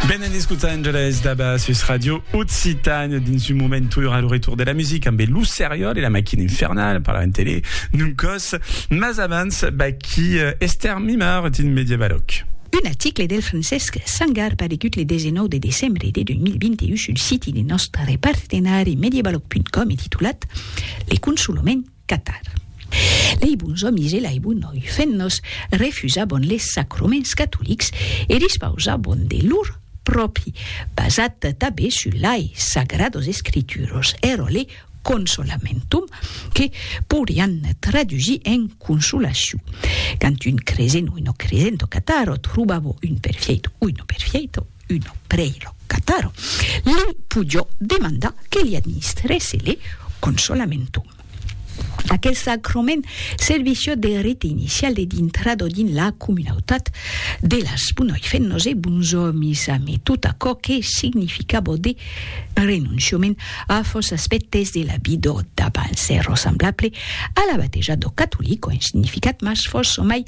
Benen Los Angeles daba sus Radio Occitània dins un moment tura al retorn de la musica ambe Lo Seriòl e la Maquina Infernala parlavan tele d'un còs mas abans vaquí Esther Mimard dins Mediavalòc. Un article del Francesc Sangar paregut le 19 de decembre de 2021 sul siti de nòstre partenari Mediavalòc.com e titulat Le consolaments, Catar. Lei bons òmis e lai bon noi fennos refusabon les sacroments catolics e dispausabon de lor pròpi, basat tabé sus lai Sagrados Escrituros, ero le Consolamentum, que pourian tradusir en consolaciu. Quand un cresent oi no cresent o catar o trobavo un perfièito oi no perfièito, uno prei lo cataro, li pujò demandar que li administrèsse le consolamentum. Aquel sacrament servissió de rite inicial de dintrado dins la comunautat de las Bunoifennos e Bunsomis amé tot aquò que significabó de renonciament a fòs aspèctes de la vidó d'abans, ero semblable a la bateja do catolic o en significat mas fòs somai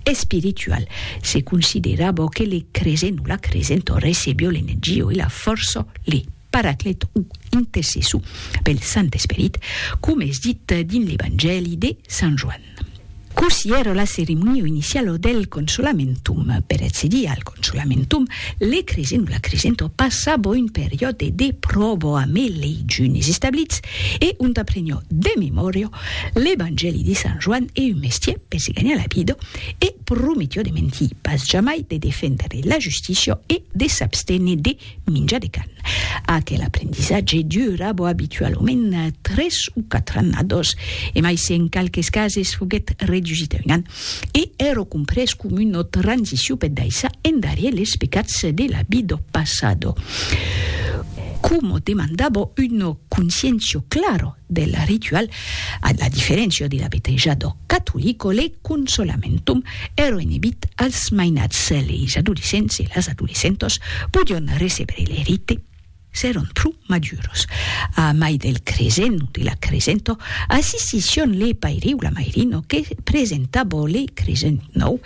Espiritual, se considera bo que le cresent o la cresent o recebio l'energia o la fòrça, le Paraclet o intercessor pel Sant Esperit, coma es dit dins l'Evangèli de Sant Joan. Cossí èra la ceremonia iniciala del Consolamentum per accedir al. Çò lamentom, le cresent o la cresento passabo un periòde de pròbo amé lei junis establits e ont aprenio de memòria l'Evangèli de Sant Joan e un mestier per se ganhar la vida e prometio de mentir pas jamai, de defendre la justícia e de s'abstener de Minja de can. Aquel aprendissatge dura bo abitualament tres o quatre annados, e mai se en qualques cases foguèt redusit a un an, e ero comprés com una transicion per daissar endarier les pecats de la vid do passado. Como demandabo una conscientio clara del ritual, a la diferéncia de l'abeteja d'ò catolico, le consolamentum ero enebit als mainats, leis adolescents e las adolescentas podion recebre le rite s'èron pro maduros. A mai del cresent o de la cresenta, assistission le paire o la mairina que presentava le cresent nòu,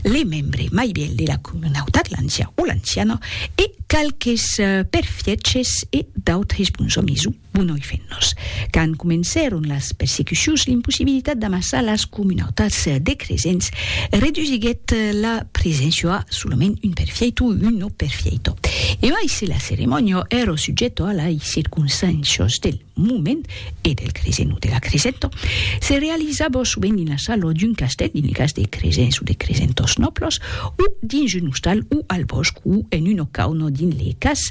le membre mai vièlh de la comunautat, l'ancian o l'anciana, e qualques perfièches e d'autres bons òmis o. Bon noi fennos. Quand comencèron las persecucions, l'impossibilitat d'amassar las comunautats de cresents redusiguèt la preséncia a solament un perfieito o un no perfieito. E mai se la ceremònia èra subjèta a lai circonstàncias del moment e del cresent o de la cresenta, se realizava sovent dins la sala d'un castèl, dins lo cas de cresents o de cresentors nòblas, o dins un ostal o al bòsc o en una cauna dins le cas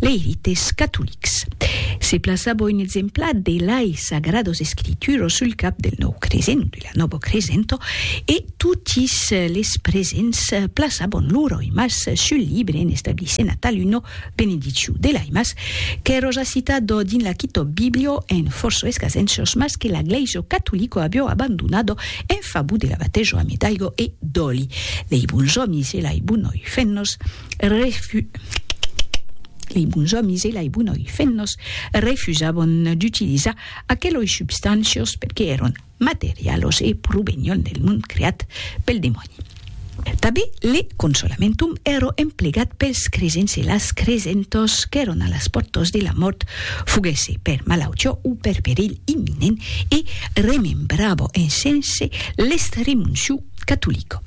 Leirites catolics. Se plaça boin exempla de lai sagrados escrituro sul cap del nòu cresent, de la nobo cresento, e totis les presents plaçabon lor oimas sul libre en establissent atal uno benediciu de l'aimas qu'è roja citado dins la Kitòb Biblio en forço escasenços mas que la Gleiso catolico abio abandonado en favor de la batejo a medaigo e d'òli lei bons òmis e lai bonoi fennos refu. Lei bons òmis e lei bonoi fennos refusavon d'utilizar aqueloi substancios perque èron materialos e provenion del mond creat pel demòni. Tabe le consolamentum ero emplegat pels cresents e las cresentos qu'èron a las pòrtas de la mòrt, foguèsse per malautiá o per perilh imminent, e remembravo en sense l'estremociu catolico.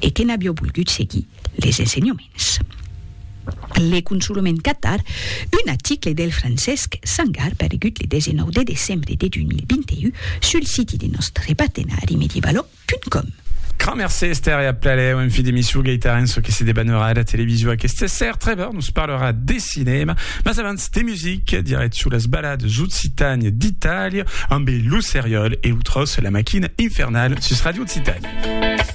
e que n'avió volgut seguir les ensenhoments. Le consolament qu'atar un article del Francesc Sangar paregut le 19 de decembre de 2021 sul siti de nòstre partenari medievalo.com. Grand mercé Esther e a plaler un fi d'emission Gaitaren çò que se debanera era television aqueste ser Trevor nos parlera de cinema mas abans de music direct sur las balades occitanes d'Italia ambe Lo Seriol e lo Tros la maquina infernale sus Radio Occitània.